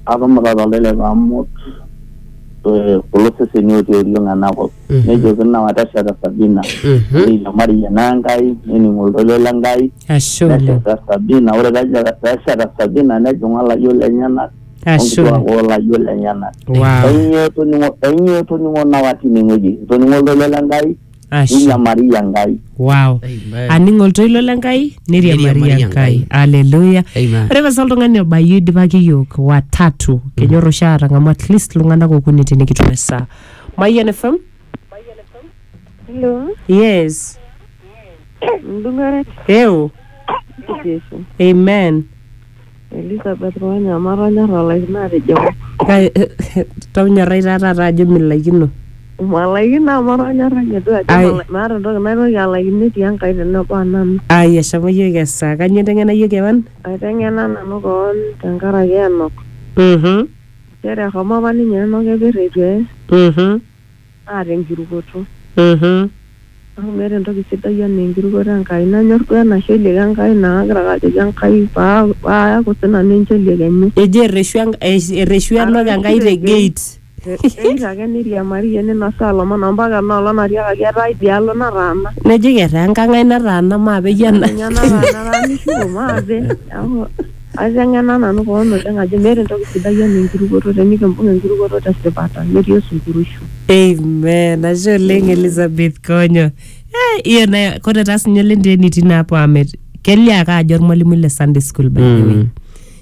Atumita to lelep amu eh, kulo seseni otii oriong ena kop. Mhm. Nejo kina watesheta Sabina. Mhm. Neiriamari ena Enkai, nening oltoilo le Enkai. Ashe oleng. Nesheta Sabina, ore peja- pesheta Sabina nejing'u olayiok lenyenak Ashe oleng. onkituak olayiok lenyenak. Wow. Ainyoo etoning'o ainyoo etoning'o nawa tinewueji? Etoning'o oltoilo le Enkai Ashe. ninyamari enkai Wow. Amen. aning oltoilo le nkai niriamari Niriamari enkai Enkai. aleluya Amen. ore pasa oltung'ani obayie idipaki yiok watatu kenyor oshi atang'amu at least iltung'anak okuni tinikitum esaa mayian fm Hello, yes Ndung'aret eu Yesu. amen Elisabet Konya, amaa tonyorra alaikino atejo ng'o? Tonyorrai taa taata ajo milaikino. Malaikino amu atonyorra ninye duo ajo Ai. mala- maata entoki naitoki alaikino etii Enkai tenebo o nanu. Ai eshomo iyiook esaa. Kanyoo inteng'ena iyie kewan? Aiteng'ena nanu koon tenkaraki Enok. Mhm. Nchere eshomo apa ninye Enok epir eitu eye. Mhm. naa tenkirukoto. Amu meeta entoki sidai anaa enkirukoto Enkai. Nanyor duo ena sheliek Enkai naa kagira ake ajoki Enkai paa paayaku sii nanu encheliek enye. Eji erreshu erreshu enok Enkai te gate. Eitu ake neiriamariyie neinosaa ilomon ompaka ena olong natiakaki etaa idialo nataana. Nejoki etaa enkang ai nataana mape iyie ena. Etaa ninye nataana etaa mishuko mape. Aiteng'ena nanu koon oleng ajo meeta entoki sidai enaa enkirukoto tenikimbung enkirukoto tesipata metii osunkuruishu. Amen. Ashe oleng Elizabeth Konyo. Eh, iyo na kore taa sinye oleng te enitii naa apo amet. Kelio ake ajo ormwalimui le Sunday school by the way.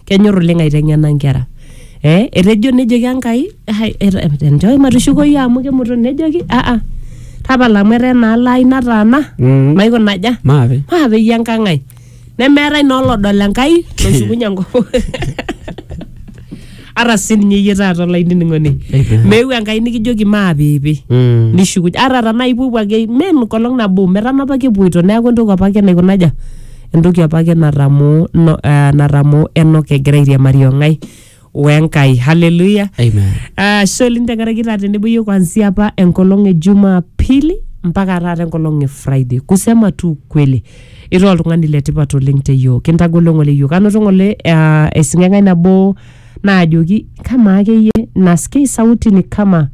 Kenyor oleng aiteng'ena nkera. Eh, etejo nejoki Enkai, hai enjoo matushukoyu amu kemuto nejoki ah ah tapala amu etaa enaalo ai nataana, maikuna aja? Maape. Maapeyie enkang ai. nemeetae naa olodol enkai loshukunye enkop ata sininye iyie taata olainining'oni meeu enkai nikijoki maapiipi Mm. nishukuny ata tanaa ipuopuo ake me enkolong nabo metanapaki epuoito neeku entoki apake naikunaja entoki apake natamoo no, eh, natamoo enok egira airiamari ong'ae wenkai haleluya Amen. ashe oleng tenkaraki taa tenebo yiok kuanzia apa enkolong e jumapili mpaka taata enkolong e friday kusema tu ukweli ira oltung'ani letipat oleng te yiok kintagolo ng'ole yiok anoto ng'ole ah, esing'eng'ai nabo naajoki kamaa akeyie naskei sauti ni kama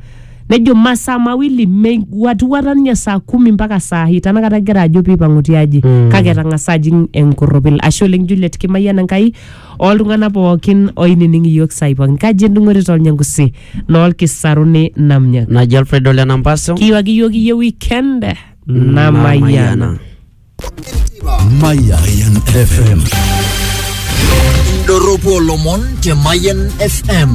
nejo masaa mawili mewuatiwuata ninye saa kumi mpaka saa hii tanakata egira ajo piipang'u tiaji Mm. kake etang'asa ajing enkorropil ashe oleng juliet kimayian enkai Ooltung'ana pooki ooinining iyiook saai pooki. Nkaji endung'ore to Olnyangusi noo Lkisaruni Namnyak. Naji Alfred Ole Nampaso. Kiiwaki iyiook iyie weekend namayiana. Mayan FM. Indorropu olomon te Mayan FM.